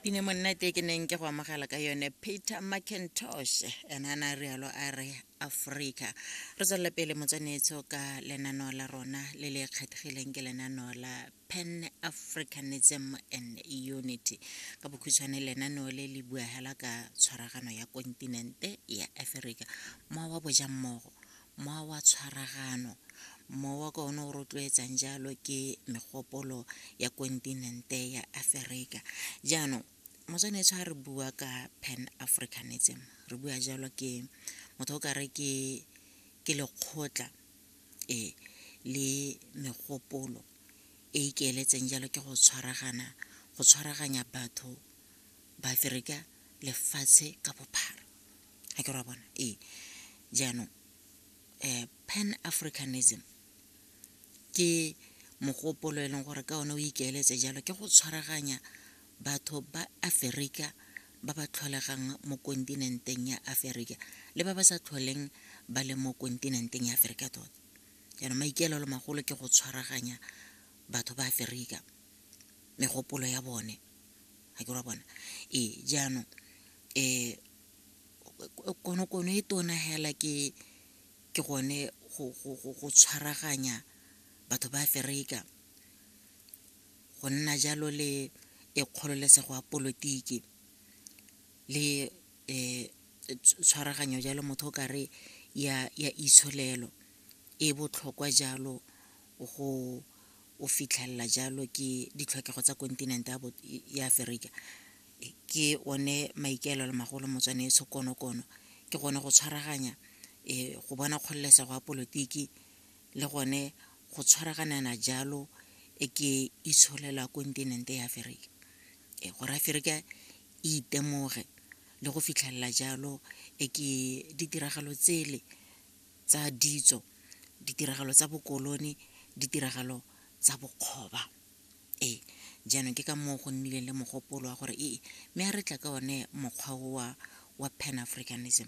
pine monnete ke neng ke go amogela ka yone peter mcintosh ena a na rialo a re aforika re tswelele pele motswanetso ka lenaneo la rona le le kgethegileng ke lenaneo la pan africanism and unity ka bokhutshwane lenaneo le le buagela ka tshwaragano ya kontinente ya aforika mowa wa bojammogo Mowa wa tshwaragano. Mowa ka one o rotloetsang jalo ke megopolo ya kontinente ya Aferika. Jaanong, motswanetso ga re bua ka Pan Africanism, re bua jalo ke motho o kare ke ke lekgotla e le megopolo e ikeeletseng jalo ke go tshwaragana go tshwaraganya batho ba Aferika lefatshe ka bophara. ga ke ra bona ee jaanong um pan africanism ke mogopolo e leng gore ka one o ikaeletse jalo ke go tshwaraganya batho ba aferika ba ba tlholegang mo kontinenteng ya aferika le ba ba sa tlholeng ba le mo kontinenteng ya aferika tota jaanong maikaelelo magolo ke go tshwaraganya batho ba aferika megopolo ya bone ga ke ra bona ee jaanong Konokono e tona hela ke gone go tshwaraganya batho ba Aferika, go nna jalo le e kgololesego ya polotiki le tshwaraganyo jalo motho o kare ya itsholelo e botlhokwa jalo go fitlhelela jalo ke ditlhokego tsa kontinente ya Aferika. ke one maikaelelo magolo motswane e tshokonokono ke gone go tshwaraganya um go bona kgololesego ya polotiki le gone go tshwaraganana jalo e ke itsholelwa kontinente ya aferika e gore aferika e itemoge le go fitlhelela jalo e ke ditiragalo tsele tsa ditso ditiragalo tsa bokolone ditiragalo tsa bokgoba Ee, jaanong ke ka moo go nnileng le mogopolo wa gore ee, mme a re tla ka one mokgwa owa wa Pan-Africanism.